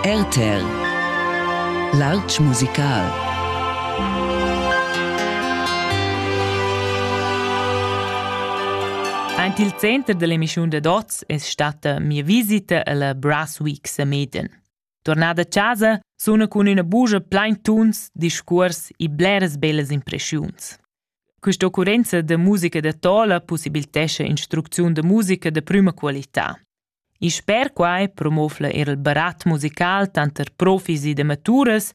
RTL Lartg musical Aint il center dell'emischun dad oz es statta mia visita alla Brass Week Sameden. Tornada a casa suna cun üna bugia plain tuns, discuors e bleras bellas impressiuns. Questa occurenza da musica da tola possibilitescha instrucziun da musica de prüma qualità. И sper quai promovla er il barat musical tanter profis ed amaturas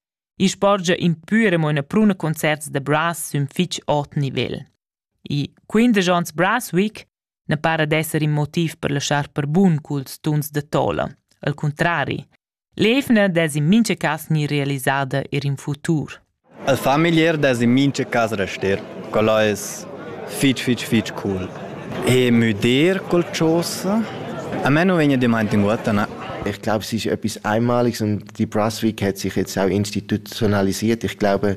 e sporgia in pü e mo ina pruna concerts da brass sün fich ot nivel. E quindesch ons Brass Week ne para d'esser in motiv per laschar per bun culs tuns da tola, al cuntrari. L'eivna dess in mincha cas gnir realisada eir in futur. El fa meglier dess in mincha cas rester. Quel es fich fich fich cool. E müder col chosa, a me nu vegna damaint in guota, na. Ich glaube, es ist etwas Einmaliges und die Brunswick hat sich jetzt auch institutionalisiert. Ich glaube,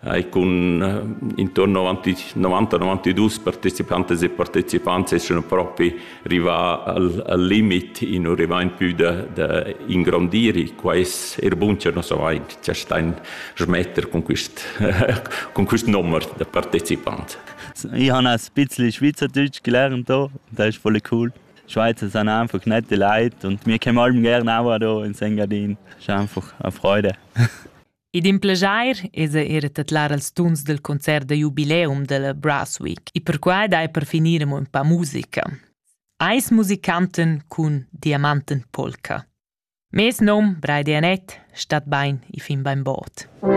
hai cun intorno a 90-92 partecipantes e partecipants essere propi rivà al, al limit in arrivare più da, da ingrandire quais er buncher nos avaint c'è stein schmetter con quist con quist nummer da partecipant Ich habe ein bisschen Schweizerdeutsch gelernt da, das ist voll cool. Schweizer sind einfach nette Leute und wir kommen allem gerne auch da in Engadin. Das ist einfach eine Freude. Id in plejair esa era tedlar als tuns del concert da jubileum della Brassweek e perquai dai per finir amo ün pa musica. Eis musicanten cun diamanten polca. Mes nom, Braide Anett, stat bain e fin bain bod.